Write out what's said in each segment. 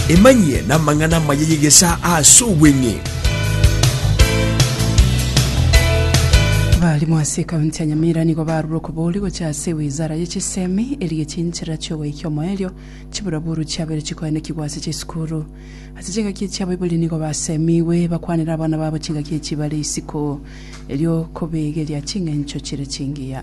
Emanyie namang'ana amaya y'egesaa aase obweng'e. Abaalimu ase ekaunti ya Nyamira nigo barure okobori gochia ase ewizara ye chisemi erigie chinchera chi'ogoika omoerio chiburaburu chiabeire chikoenekigwa ase chisukuru. Ase chingaki echia Baibuli nigo basemigwe bakwanere abana babo chingaki echi bare isiko erio kobeegeria ching'encho chire chingiya.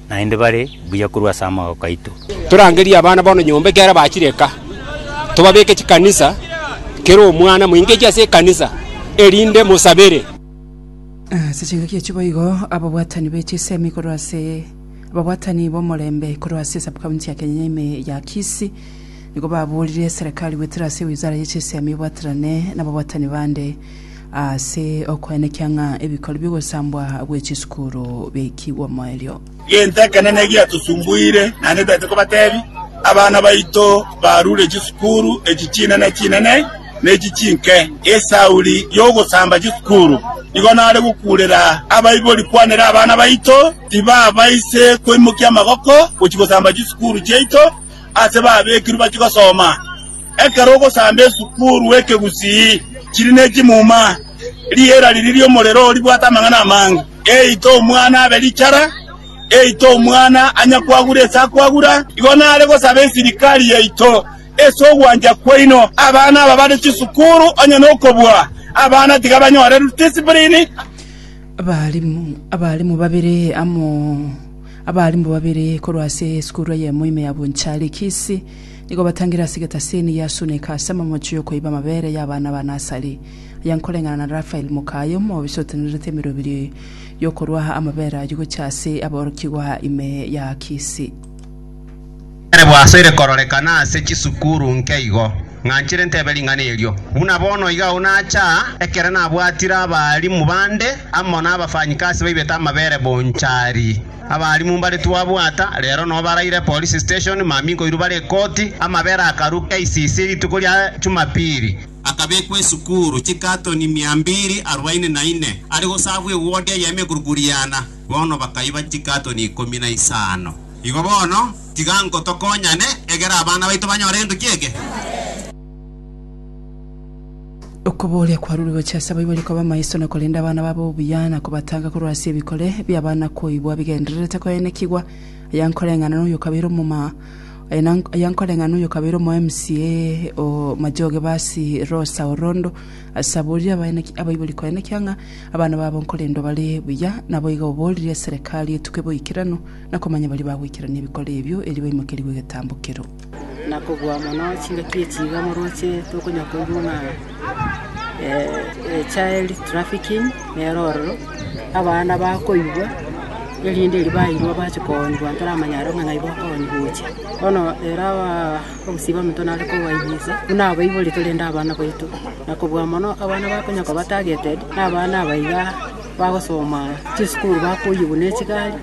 naende bare buya korwa ase amagoka aito. Torangerie abana bono nyomba ekiagera bachire eka, tobabeke chikanisa, kera omwana moingekie ase ekanisa, erinde mosabere. Ase chingaki echi boigo ababwatani be chisemi korwa ase ababwatani b'omorembe korwa ase Sub-county ya Kenya ime ya Kisii nigo babooririe eserekari goetera ase Wizara ye Chisemi ebwaterane nababwatani bande Ase okoenekia ng'a ebikori bi'ogosambwa gwe chisukuru biaikigwe omoerio. Gento ekenene egiatosumbuire naende taete kobatebi, abana baito barure chisukuru echi chinene chinene na echi chinke. Esauri y'ogosamba chisukuru nigo nare gokurera abaibori kwanera abana baito tibabaise koimokia amagoko gochia gosamba chisukuru chiaito ase babekirwe bachie gosoma. Ekero ogosamba esukuru ekegusii chiri ne chimuma, riera riria ri'omorero oo ribwate amang'ana amange. Eite omwana abe richara, eite omwana anya kwagura ase akwagura. Igo nare gosaba esirikari yaito ase ogwancha kwaino, abana aba bare chisukuru onye nokobua abana tiga banyore discipline. Abalimu abalimu babere amo abalimu babere korwa ase esukuru eyemo ime ya Bonchari Kisii. Nigo batangire ase egetasini ya Suneka ase amamocho y'okoiba amabere y'abana ba Nasari, aya nkoreng'ana na Rafael mokaye omobisa otenenerete emerobiri y'okorua amabere ayio gochia ase aborokigwa ime ya Kisi. Nere bwasoire kororekana ase chisukuru nke igo, ng'anchire ntebe ring'ana erio. Buna bono iga agwo nacha, ekero nabwatire abaalimu bande amo na abafanyikasi baibete amabere bonchari. Abarimu mbare twabwata, rero no baraire Police Station, mami nkoirwa bare ekoti, amabera akarua KCC rituko ria Jumapili. Akabekwa esukuru chikatoni mia mbiri arubaini na ine, are gosabwa ewodi eye emeguruguriana, bono bakaiba chikatoni ikomi na isano. Igo bono, tiga nko tokonyane, egera abana baito banyore egento ki'eke. Okobooria kwarure gochia ase abaibori koba amaiso na korenda abana babo obuya, na kobatanga korwa ase ebikore bi'abana koigwa bigendererete koenekigwa. Aya nkoreng'ana noyo okabeire omoma aya na aya nkoreng'ana noyo okabeire omo MCA o Majoge Basi Rosa Orondo ase aboririe abaeneki abaibori koenekia ng'a abana babo nkorendwa bare buya naboigo oboririe serikali etuke boikeranu na komanya baria bagoikerania ebikore ebio erio baimokerigwe egetambo keroo. na kobua mono chingaki echi iga moroche tokonywa koigwa ng'a child trafficking nero ororo, abana bakoigwa erinde erio bairwa bache koonywa ntaramanya aro ng'a naye bakoonywa gocha. Bono ere abaa obosio bwa omonto nare kobaibisa buna abaibori torende abana baito, na kobua mono abana bakonya koba targeted na abana aba iga bagosoma chisukuru bakoyigwa ne chigari.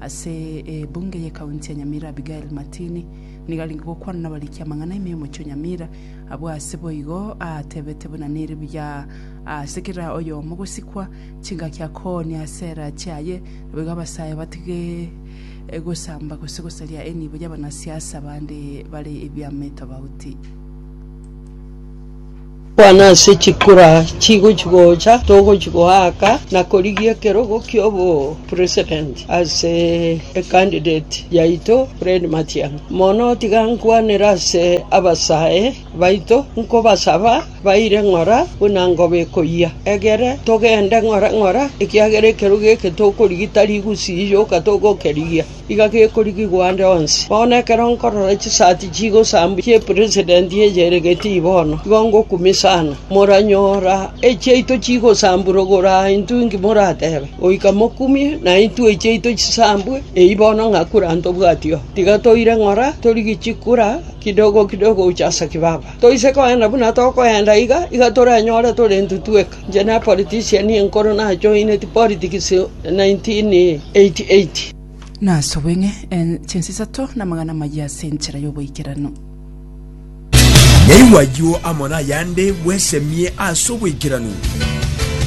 Ase ebunge y'ekaunti ya Nyamira Abigail Matini nigo arenge gokwana nabariki amang'ana ime y'omochie o Nyamira. Abwo ase boigo aatebete buna nere buya ase kera oyomo gosikwa chingaki akoonia ase erache aye naboigo abasae batige gosamba gose gosaria enibo y'abanasiasa bande bare ebiama etobauti. Kwana ase chikura chigochi gocha togochi goaka na korigia ekerogo kiobo president ase e candidate yaito Fred Matiang'i. Mono tiga nkwanere ase abasae baito nkobasaba baire ng'ora buna ngobe koyia egere togende ng'ora ng'ora ekiagera ekerogo eke tokorigia tari gusii yoka togokerigia. iga gekorigigwa ande onsi. Bono ekero nkorora chisati chigosambwa chi'epresident eria ere Gittii bono, igo ngokumia sana. Moranyora echiaito chigosambwa rogoro aa intwe inki moratebe? Goika mokumie na intwe echiaito chisambwe eyio bono ng'a kura ntobwati oo. Tiga toire ng'ora torigie chikura kidogo kidogo gocha ase kibaba. Toise kogenda buna tokoenda iga, iga toranyore tore intwe tweka. Inche na politician enkoro najoineti politics 1988. Nasubwe ng'e en chinsa isato na amagana amayia ase enchera y'oboikeranu. Nyaigwa ayio amo nayande bwesemie ase oboikeranu.